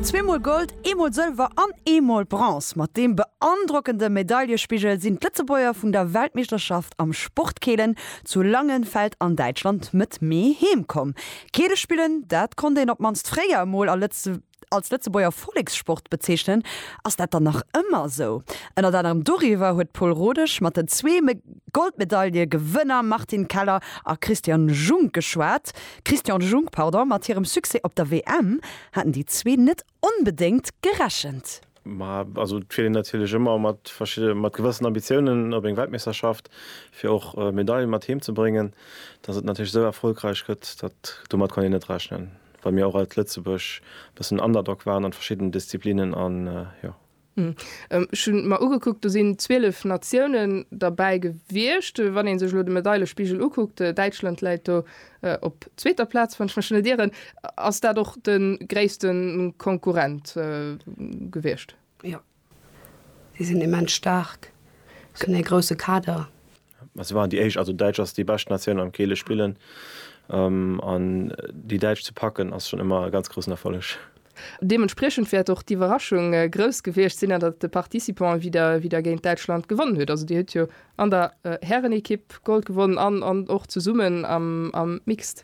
Zweemol Gold, eemol Sëlwer an eemol Bronze. Mat deem beandrockende Medaillespigel sinn d'Lëtzebuerger vun der Weltmeeschterschaft am Sportkeelen zu Langenfeld an Däitschland Mëtt Mee heem komm. Keele spillen, dat konnt een op d'mannst fréier emol als Lëtzebuerger Vollekssport bezeechnen. Ass dat dann nach ëmmer esou? Ënnert anerem doriwwer huet d'Paule Rodesch mat den zwee Goldmedaillegewënner Martine Keller a Christian Jung geschwat. Christian Junck, Pardon, mat hirem Succès op der WM haten déi zwee net onbedéngt gerechent. Ma also et fiert een natierlech ëmmer mat verschidde mat gewëssen Ambitiounen op eng Weltmeeschterschaft, fir och Medailen mat heem ze bréngen. Datt et natierlech esou erfolgräich gëtt, dat domat konnt een net rechnen, well mir och als Lëtzebuerg e bëssen Underdog waren an verschiddenen Disziplinnen an jo Ech hu mer ugekuckt, do sinn 12 Natiounen derbäi gewiescht. Wann ee sech elo de Medailespigel ukuckt, Däitschland läit do op zweeter Plaz, wann ech mech net ieren. Ass dat och de gréisste Konkurrent gewiescht? Jo, si sinn immens staark, si hunn ee grousse Kader. Mä si waren déi éischt, also Däitsch ass déi bescht Natioun am Keele spillen an déi Däitsch ze packen ass schonn ëmmer e ganz groussen Erfolleg. Deementspriechend wäert och d'Iwwerraschung grouss gewiescht sinn, datt de Participant wieder géint Däitschland gewonnen huet. Also Dir hutt jo an der Härenekipp Gold gewonnen an och zesummen am Mixed.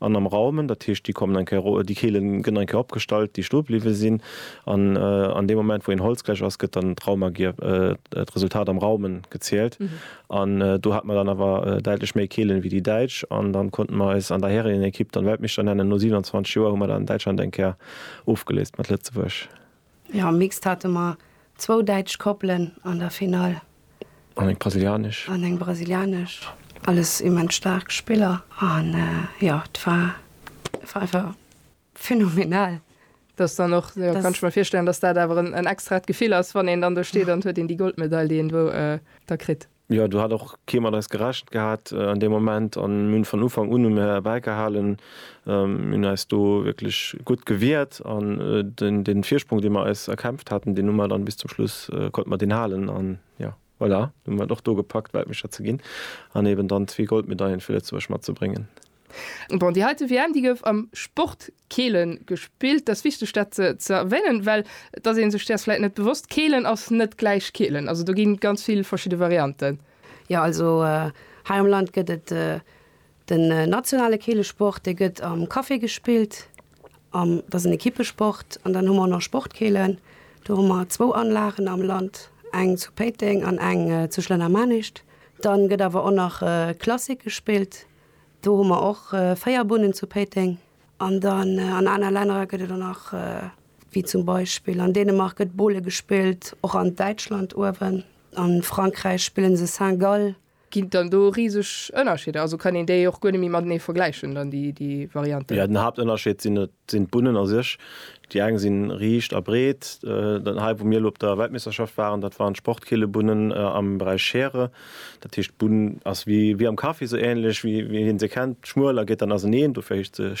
An am Raumen, dat heescht, déi kommen eng Kéier ro, déi Keele gënn eng Kéier opgestallt, déi stoe bliwwe sinn. An an deem Moment, wou een Holz gläich ass, gëtt dann d'Raumagier, d'Resultat am Raumen, gezielt. An do hat mer dann awer däitlech méi Keelen ewéi déi Däitsch. An dann konnte mer eis an der Härenenekipp dann Weltmeeschter nennen. No 27 Joer hu mer dann Däitschland eng Kéier ofgeléist mat Lëtzebuerg. Jo, am Mixed hate mer zwou däitsch Koppelen an der Finall. An eng brasilianesch. An eng brasilianesch. Alles immens staark Spiller an jo, et war einfach phenomenal. Dass dann och, jo, kann ech mer virstellen, dass dat awer en extraet Gefill ass, wann een dann do steet an et huet een déi Goldmedail, déi een do da kritt. Jo, do hat och kee mat eis gerechent gehat an deem Moment an mir hunn vun Ufank un hunn mir derbäi gehalen. Mir hunn eis do wierklech gutt gewiert an dee Virsprong, dee mir eis erkämpft haten, deen hu mir dann bis zum Schluss, konnte mir deen halen an jo, voilà, hu mir et och do gepackt, Weltmeeschter ze ginn an eeben dann zwee Goldmedaillen fir Lëtzebuerg matzebréngen. Bon, déi heite WM, déi gouf am Sport Keelen gespillt. Dass wichteg dat ze erwänen, well et ass een sech däers vläit net bewosst, Keelen ass net gläich Keelen. Also do ginn ganz vill verschidde Varianten. Jo, also hei am Land gëtt et den nationale Keelesport, dee gëtt am Café gespillt, am, dat ass en Ekippesport. An dann hu mer och nach Sport Keelen, do hu mer zwou Anlagen am Land, eng zu Péiteng an eng zu Schlennermanischt. Dann gëtt awer och nach Klassik gespillt, Do hu mer och véier Bunnen zu Péiteng. An dann an aner Lännerer gëtt et der nach, wéi zum Beispill an Dänemark gëtt Bowle gespillt, och an Däitschland uewen, a Frankräich spillen se Saint-Gall. Ginn et dann do riseg Ënnerscheeder? Also kann een déi och guer net méi matenee vergläichen dann, déi Varianten? Jo, den Haaptënnerscheed sinn et Et sinn d'Bunnen a sech, déi eng si riicht a breet, hei wou mir elo op der Weltmeeschterschaft waren, dat waren d'Sportkeelebunnen am Beräich Schere. Dat heescht d'Bunn ass wéi am Kaffi, esou änlech wéi een se kennt, schmuel a geet dann auseneen, dofir heescht se Schere.